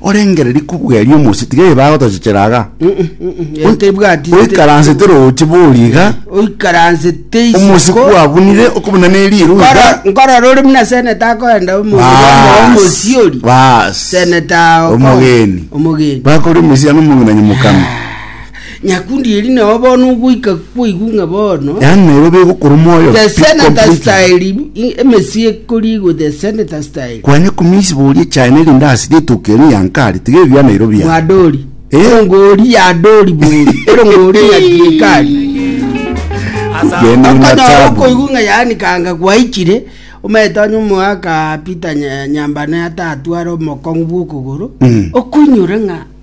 Orengereria kobweria omosio, tiga eye bagotochechera aga. Oi- Tebwati- Oikaransete roche bori iga, oikaransete isiko omosiko kwabunire okobuna ne riiro iga. Nkoro- nkorora ore buna seneta akoenda Baas, omosiori baas. seneta ago ko- Omogeni. omogeni Bakori omesiani omong'ina nyomokame. Nyakundi eri nao bono ogoika kwaigwa ng'a bono Yaani Nairobi egokora omoyo. the Pick senator completely. style i- emesii ekorigwa the senator style Kwanya kumisiba orie China erinde ase rituko erio yankari tiga ebia Nairobi ya. mwadori Eh. erongori yadori bori erongori nyakirikari Genda una okonyora tabu. okoigwa ng'a yaani kanga gwaichire omanyete onye omoaka peter Nya- nyambana yatatwara omokong'u bw'okogoro Mm. okoinyora ng'a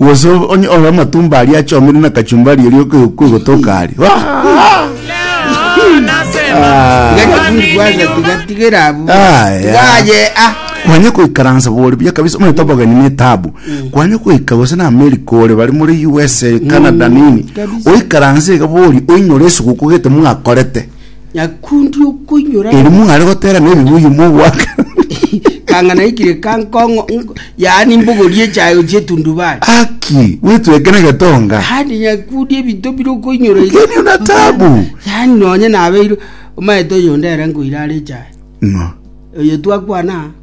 Gose onye ore amatumbo aria achomire na kachumbari eria oke- kwegotoka aria Ah! Leo nasema Iga kwa nini tikwasa nyuma? tigatigera abwo Ah, yeah. tigaye ah kwanye koikaransa bori buya kabisa omanyete obogeni na etabu kwanye koika gose na america ore bari muri usa canada nini kabisa. oikaranse iga bori oinyore esuguku gete mwakorete nyakundi okoinyora Eri ng'a mware gotera nebibuyu mogoaka. kanga naikire ka nkong'o nko- yaani mbogori echayo chietundubari Aki, wetweke negetonga. handi nyakundi ebinto bire okoinyora iga. Ng'enio na taabu. yaani nonye nabeire omaete oyonde ere nkoira are echayo Ng'o. oyo twakwana